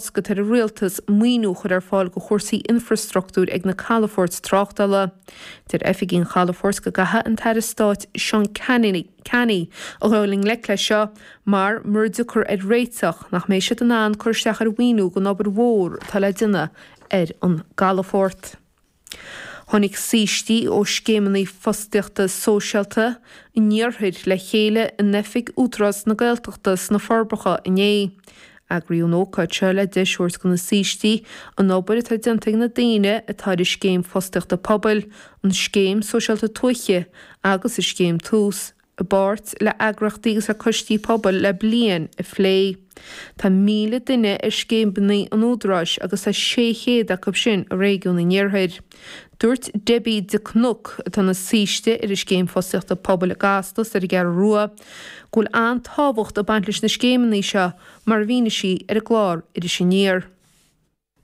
Is gá don rialtas maoiniú a chur ar fáil do chúrsaí infreastruchtúir ag na calafoirt tráchtála. Deir oifigigh an chalafoirt go gcaithfidh an tAire Stáit Seán Canney a ghabháil i ngleic leis seo mar, mura dtiocfar ar réiteach, nach mbeidh siad in ann cur isteach ar mhaoiniú don obair mhór atá le déanamh ar an gcalafort. Tháinig saoistí ó scéimeanna fostaíochta sóisialta an iarthair le chéile in oifig Údarás na Gaeltachta sna Forbacha inné. Eagraíodh an ócáid seo le deis thabhairt do na saoistí an obair atá déanta ag na daoine atá ar an Scéim Fostaíochta Pobail, an Scéim Sóisialta Tuaithe agus an Scéim Tús, i bpáirt le heagraíochtaí agus le coistí pobail le bliain, a phlé. Tá 1,000 duine ar scéimeanna an Údaráis agus tá 600 acu sin i réigiún an iarthair. Dúirt Deibí de Cnoc, atá ina saoiste ar an Scéim Fostaíochta Pobail i gCasla is ar an gCeathrú Rua, go bhfuil an-tábhacht ag baint leis na scéimeanna seo, mar a mhínigh sí ar an gclár Iris Aniar.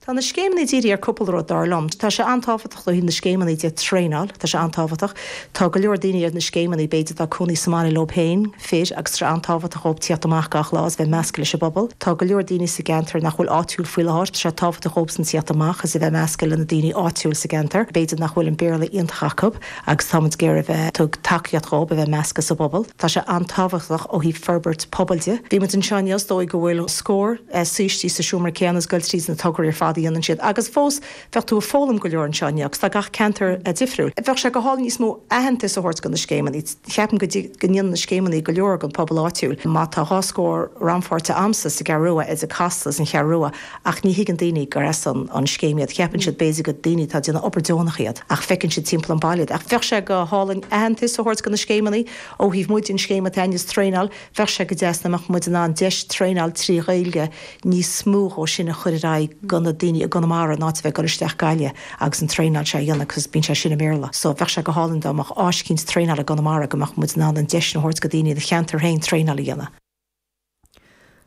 Tá na scéimeanna dírithe ar cúpla rud, dar liom. Tá sé an-tábhachtach do na scéimeanna iad a thraenáil, tá sé an-tábhachtach. Tá go leor daoine ar na scéimeanna, b'fhéidir, atá ag cónaí sa mbaile leo féin, fir, agus tá sé an-tábhachtach dhóibh tíocht amach gach lá is bheith measctha leis an bpobal. Tá go leor daoine sa gceantar nach bhfuil áitiúil faoi láthair, tá sé tábhachtach dhóibhsan tíocht amach is a bheith measctha le na daoine áitiúil sa gceantar, b'fhéidir nach bhfuil an Béarla iontach acu agus táimid ag iarraidh a bheith, tug, tacaíocht dhóibh a bheith measctha sa bpobal. Tá sé an-tábhachtach ó thaobh forbairt pobail de. Bhí muid anseo inniu is dóigh go bhfuil scór saoistí sa seomra céanna ag goil tríd na tograí ar fad a dhéanann siad, agus fós bheadh tú ag foghlaim go leor anseo inniu agus tá gach ceantar difriúil. Bheadh sé go hálainn níos mó aitheantais a thabhairt do na scéimeanna. Cheapaim go dtí go ndéanann na scéimeanna go leor don phobal áitiúil. Má tá dhá scór rannpháirtithe a'msa sa gCeathrú Rua, idir Casla is an Cheathrú Rua, Ach ní thuigeann daoine gur as an scéim iad. Cheapann siad, b'fhéidir, go daoine atá ag déanamh obair deonach iad, ach feiceann siad timpeall an bhaile iad. Ach bheadh sé go hálainn aitheantas a thabhairt do na scéimeannaí. Ó thaobh muide an scéim atá in is traenáil, bheadh sé go deas dá mbeadh muid in ann deis traenáil trí Ghaeilge níos mó dhó sin a chur ar aghaidh go na daoine i gConamara in áit a bheith ag dul isteach Gaillimh agus an traenáil seo a dhéanamh cos bíonn sé sin i mBéarla. So bheadh sé go hálainn dá mbeadh áis eicínt traenáil i gConamara go mbeadh muid in ann an deis sin a thabhairt go daoine ina cheantar féin traenáil a dhéanamh.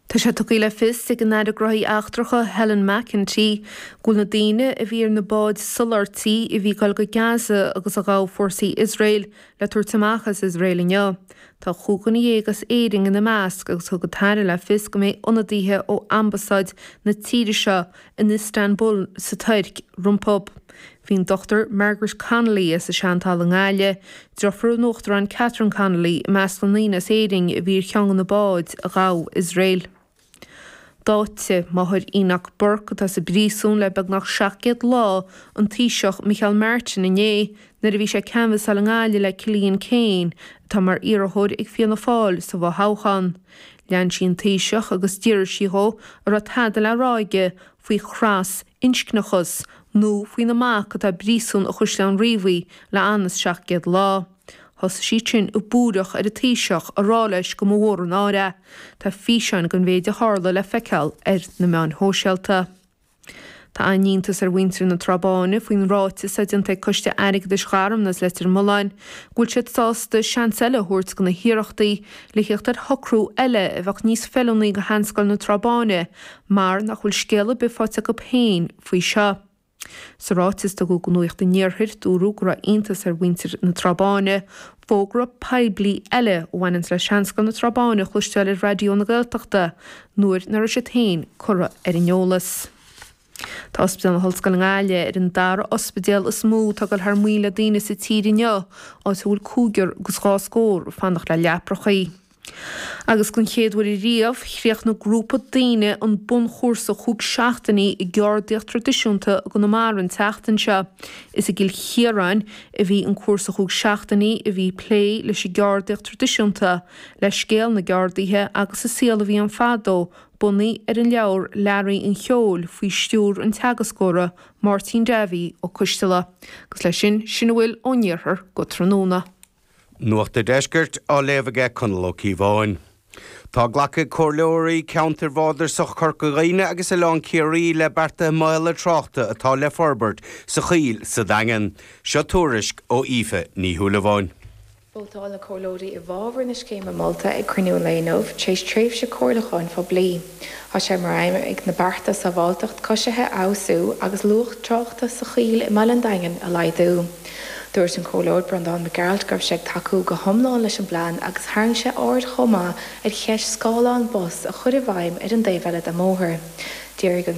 Tá sé tugtha le fios ag an Aire Gnóthaí Eachtracha, Helen McEntee, go bhfuil na daoine a bhí ar na báid soláthairtí a bhí ag dul go Gaza agus a ghabh fórsaí Iosrael le tabhairt amach as Iosrael inniu. Tá cúig dhuine dhéag as Éirinn ina measc agus thug an tAire le fios go mbeidh ionadaithe ó ambasáid na tíre seo in Istanbul sa Tuirc rompu. Bhí an Dr Margaret Connolly as Seantalamh i nGaillimh, deirfiúr an Uachtaráin Catherine Connolly, i measc na ndaoine as Éirinn a bhí ar cheann de na báid a ghabh Iosrael. D'áitigh máthair Enoch Burke, atá sa bpríosún le beagnach 700 lá, an Taoiseach Micheál Martin inné nuair a bhí sé ag canbhasáil i nGaillimh le Cillian Keane, atá mar iarrthóir ag Fianna Fáil sa bhfo-thoghchán. Lean sí an Taoiseach agus d'fhiafraigh sí dhe an raibh tada le rá aige faoi thras inscneachas, nó faoina mac atá i bpríosún i gCaisleán Riabhaigh le os cionn seacht gcéad lá. Thosaigh siad sin ag búireach ar an taoiseach ag rá leis go mba mhór an náire é. Tá físeáin den mhéid a tharla le feiceáil ar na meáin shóisialta. Tá an-iontas ar mhuintir na Trá Báine faoin ráiteas atá déanta ag Coiste Airgeadais Gharmna is Leitir Mealláin go bhfuil siad sásta seans eile a thabhairt do na hiarrachtaí le theacht ar shocrú eile a bheadh níos feiliúnaí do Sheanscoil na Trá Báine mar nach bhfuil scéal ar bith faighte acu féin faoi seo. Sa ráiteas a tugadh do Nuacht an Iarthair, dúradh go raibh iontas ar mhuintir na Trá Báine fógra poiblí eile a bhaineanns le seanscoil na Trá Báine a chloisteáil ar Raidió na Gaeltachta nuair nach raibh siad féin curtha ar an eolas. Tá Ospidéal na hOllscoile i nGaillimh ar an dara ospidéal is mó atá ag cur thar maoil le daoine sa tír inniu, áit a bhfuil cúigear agus dhá scór ag fanacht le leapachaí. Agus den chéad uair riamh, chríochnaigh grúpa daoine an bunchúrsa chúig seachtainí i gceardaíocht traidisiúnta i gConamara an tseachtain seo. Is i gCill Chiaráin a bhí an cúrsa chúig seachtainí a bhí ag plé leis an gceardaíocht traidisiúnta, le scéal na gceardaithe agus an saol a bhí ann fadó bunaithe ar an leabhar Leabhraí an Cheoil faoi stiúr an teagascóra Máirtín Dáibhí Ó Coisdealbha. Agus leis sin, sin a bhfuil ón Iarthar go tráthnóna. Nuacht an Deiscirt, á léamh ag Conall Ó Cíobháin. Tá glactha ag Comhairleoirí Ceantair Bhardasach Chorca Dhuibhne agus Oileán Ciarraí le bearta maolaithe tráchta atá le forbairt sa Choill sa Daingean. Seo tuairisc ó Aoife Ní Shúilleabháin. Vótáil na Comhairleoirí i bhfabhar na scéime molta ag cruinniú an lae inniu, tar éis tréimhse comhairliúcháin phoiblí. Tá sé mar aidhm ag na bearta sábháilteacht coisithe a fheabhsú agus luas tráchta sa Choill i mBaile an Daingin a laghdú. Dúirt an Comhairleoir Breandán Mac Gearailt go raibh sé ag tacú go hiomlán leis an bplean agus tharraing sé aird chomh maith ar cheist scáthlán bus a chur i bhfeidhm ar an dtaobh eile den mbóthar. D'fhiafraigh an.